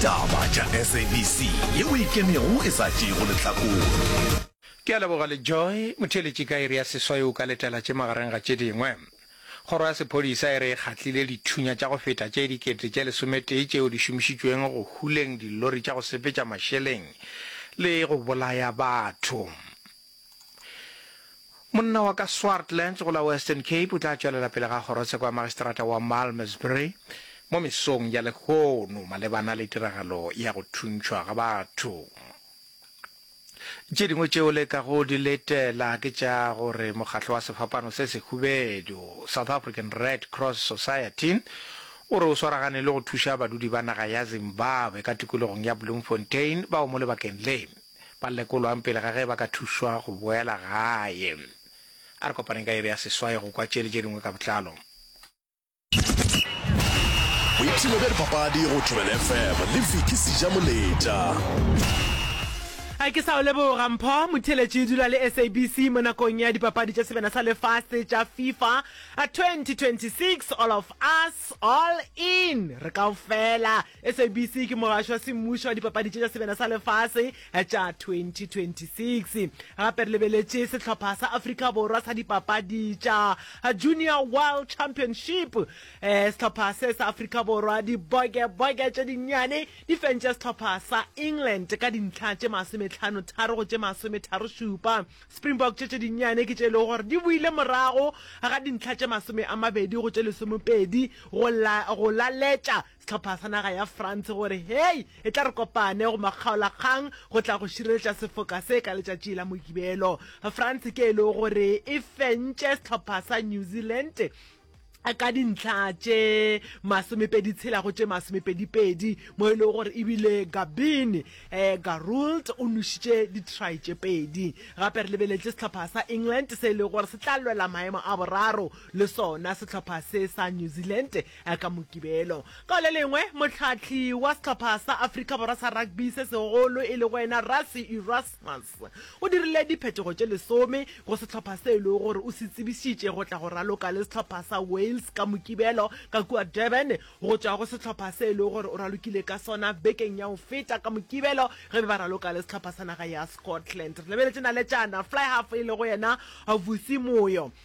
Taba tša SABC ye o e kenego e sa tšeego lehlakore. Ke a leboga le Joy. Motheeletši ka iri ya seswai o ka letela tše magareng ga tše dingwe. Kgoro ya Sephodisa e re e kgatlile dithunya tša go feta tše dikete tše lesometee tšeo di šomišitšweng go huleng dilori tša go sepetša mašeleng le go bolaya batho. Monna wa ka Swartland go la Western Cape o tla tšwelela pele ga kgorotsheko ya magistrata wa Malmesbury mo mesong ya lehono malebana le tiragalo ya go thuntšhwa ga batho. Tše dingwe tšeo le ka go di letela ke tša gore mokgatlo wa sefapano se sehubedu South African Red Cross Society o re o swaragane le go thuša badudi ba naga ya Zimbabwe ka tikologong ya Bloemfontein bao mo lebakeng le ba lekolwang pele ga ge ba ka thušwa go boela gae. A re kopaneng ka iri ya seswai go kwa tše le tše dingwe ka botlalo. Boipshino bja dipapadi go Thobela FM le Vicky Sijamoletša. Ga ke sa o leboga Mpho Motheletši dula le SABC mo nakong ya dipapadi tša sebena sa lefase tša FIFA 2026 all of us all in re kaofela SABC ke mogašo wa semmušo wa dipapadi tše tša sebena sa lefase tša 2026. Gape re lebeletše sehlopha sa Afrika Borwa sa dipapadi tša Junior World Championship. Eh, sehlopha se sa Afrika Borwa, diboke-boke tše dinnyane, di fentše sehlopha sa England ka dintlha tše masometlhano tharo go tše masometharo šupa. Springbok tše tše dinnyane ke tše e lego gore di boile morago ga dintlha tše masome a mabedi go tše lesomepedi go la go laletša Sehlopha sa naga ya France gore hei e tla re kopane go makgaolakgang go tla go šireletša sefoka se ka letšatši la Mogibelo. France ke e lego gore e fentše sehlopha sa New Zealand ka dintlha tše masomepedi tshela go tše masomepedipedi mo e lego gore ebile gabin um eh, garold o nošitše ditry tše pedi gape re lebeletse sehlopha sa england se e lego gore se tla lwela maemo a boraro le sona sehlopha se sa new zealand A ka Mokibelo, ka le lengwe, mohlahli wa sehlopha sa Afrika Borwa sa rugby se segolo e lego yena Rassie Erasmus o dirile diphetogo tše lesome go sehlopha se e lego gore o se tsebišitše go tla go raloka le sehlopha sa Wales ka Mokibelo ka kua Durban go tšwa go sehlopha se e lego gore o ralokile ka sona bekeng ya go feta ka Mokibelo ge be ba raloka le sehlopha sa naga ya Scotland. Re lebeletše naletšana fly half e lego yena Vusi Moyo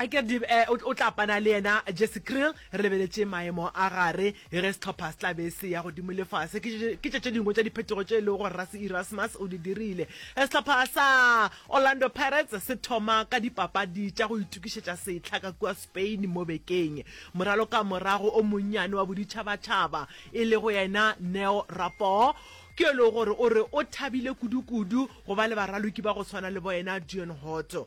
a ke re eh, o tla pana le yena jesse krill re lebeletše maemo a gare ge setlhopha se tla be se ya godimo le fase ke tše tše dingwe tša diphetogo tše e lego gore rase erasmus o di dirile eh, setlhopha sa orlando pirates se thoma ka dipapadi tša go itokišetša setlha ka kua spain mo bekeng moralo ka morago o monnyane wa boditšhabatšhaba e lego yena neo rapo ke e lego gore o re o thabile kudu-kudu go ba le baraloki ba go tshwana le boyena dion hoto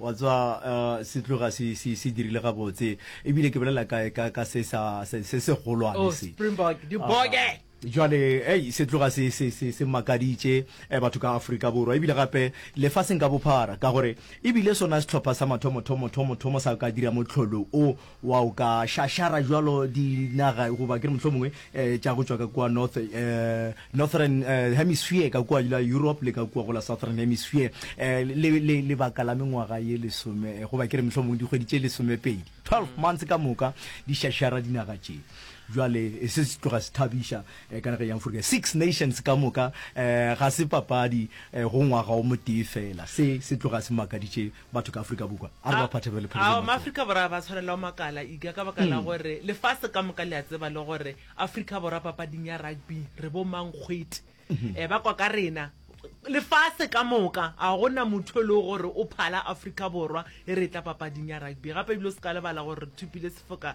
Wa tswa, uh, se tloga se, se, se dirile gabotse. Ebile ke bolela ka, ka, ka se sa, se, se segolwane oh, se. Springbok, di boge! Uh, jwale ei se tloga se se se se makaditše eh, batho ka Afrika Borwa ebile gape lefaseng ka bophara ka gore ebile sona setlhopha sa mathomo thomo thomo thomo sa ka dira motlholo o Wa o ka šašara bjalo dinaga goba ke re mohlomongwe tša go tšwa ka kua North, Northern Hemisphere, ka kua la Europe le ka kua go la Southern Hemisphere, le, le, lebaka la mengwaga ye lesome, goba ke re mohlomongwe dikgwedi tše lesomepedi, twelve months ka moka, di šašara dinaga tše. Bjale se se tloga se thabiša ka nageng ya Aforika. Six nations ka moka, ga se papadi go ngwaga o motee feela. Se se tloga se makaditše batho ka Afrika Bukwa a re ba phathebe le phele ao maafrika borwa ba tshwarela makala iga ka baka la hmm. gore lefase ka moka le a tseba le gore Afrika borwa papading ya rugby re bo mang kgwete hmm. eh, ba kwa ka rena lefase ka moka a gona motho e le gore o phala Afrika borwa e re tla papading ya rugby gape ebile o se ka lebala gore re thupile sefoka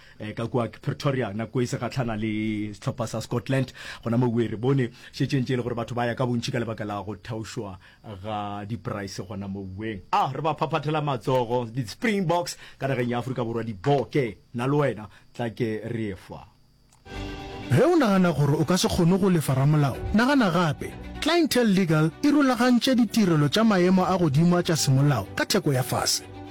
Eh, ka kua pretoria nako e se gatlhana le setlhopha sa scotland gona mo re bone šetšeng tše e le gore batho ba ya ka bontšhi ka lebaka la go thaošwa ga diprice gona mo ueng a re ba phaphathela matsogo di-springboks ka nageng ya aforika borwa diboke na le wena tla ke re fa ge o nagana gore o ka se kgone go lefa ramolao nagana gape clientele legal e rulagantše ditirelo tša maemo a godimo a tša semolao ka theko ya fase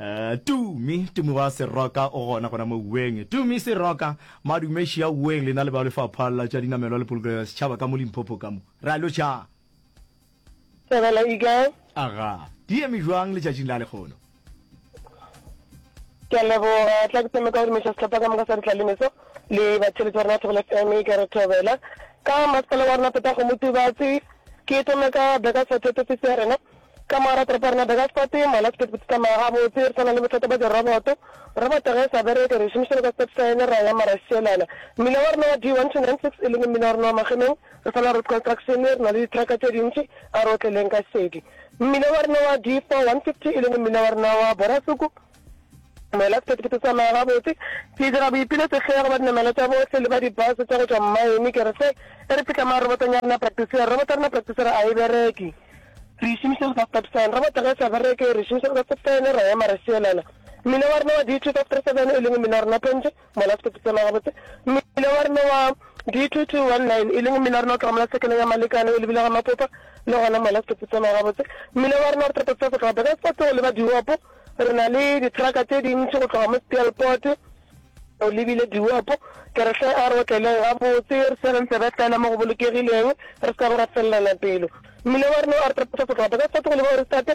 Uh, tumi tumi wa seroka o gona gona mo uweng tumi seroka madumeši ya uweng lena le ba lefapha la tša dinamelwa le polokelo ya setšhaba ka mo limphopo ka mo ra lo tša sebela eagle aga di eme jwang letšatšing la lekgono ke a leboga tla ke tseme ka gore meša setlhopha ka moka sa ditlalemeso le batheletsi ba rena thobela fm ke re thobela ka masepala wa rena peta go motubatse ke tome ka beka for thepefisi ya rena Ka morago toropo ya rena Daggasport, mola sekete bo tsetlamaga gabotse, re sa na le bothata bja diroboto. Roboto ge e sa bereke, re e šomišela ka sekete sa yone, ra ya mara e šielana. Mmila wa rena wa D1296, e leng mmila wa rena wa Magemeng, re sa na road construction, re na le dithraka tše dintši, a re otleleng ka šedi. Mmila wa rena wa D4150, e leng mmila wa rena wa Borasuku, Moela sephethephethe sa maya gabotse. Ke dira boipilo tefego ba dinamela tša bohle le ba dibase tša go tšwa mmaene. Ke re se e re fihla marobotong ya rena practice. Robot ya rena practice re a e bereke. Re e šomiša go sa stop sign. Robot ge e sa bereke re e šomiša go sa stop sign ra ema ra šielana. Mmila wa rena wa D257 e leng mmila wa rena pentše. Mola setopo sona gabotse, mmila wa rena wa D2219, e leng mmila wa rena o tloga mola sekeleng ya Malekane o lebile ga Mapopa, le gona mola setopo sona gabotse, mmila wa rena re topotsa go tloga Burgersfort go leba Diwopo, re na le dithraka tše dintši go tloga mo Speelport o lebile Diwopo, ke re hle a re otleleng gabotse, re tshwere ntsebe fela mo go bolokegileng, re se ka bo ra felelana pelo. Mmila wa rena o re topotsa go tloga Burgersfort go leba Oristate,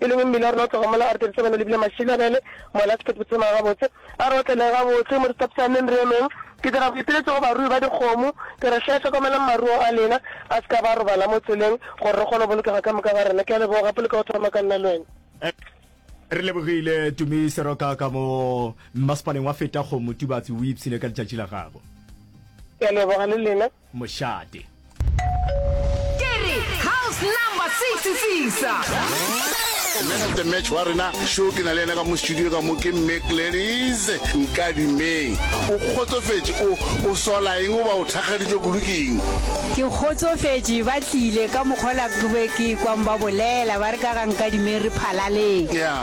E leng mmila wa rena o tloga mola a re thabisa bana lebile mašila bjale mola se phethe phuthologa gabotse a re otleleng gabotse mo re tapisaneng re emeng ke dira boipiletšo go barui ba dikgomo ke re hle hlokomelang maruo a lena a se ka ba robala mo tseleng gore re kgone go bolokega ka moka ga rena ke a leboga gape le ka go thoma ka nna le wena. Re lebogile Tumi Seroka ka mo mmasepaleng wa Fetagong Motubatsi o ipshine ka letšatši la gago. Ke a leboga le lena. mošate. Ke re house number six sisa. The man of the match wa rena show ke na le ena ka mo studio ka mo ke mme Gladys Nkadimeng. O kgotsofetše o o sola eng goba o thakgaditšwe kudu ke eng? Ke kgotsofetše ba tlile ka mokgwa la ke be ke kwang ba bolela ba re ka ga Nkadimeng re phalaleng.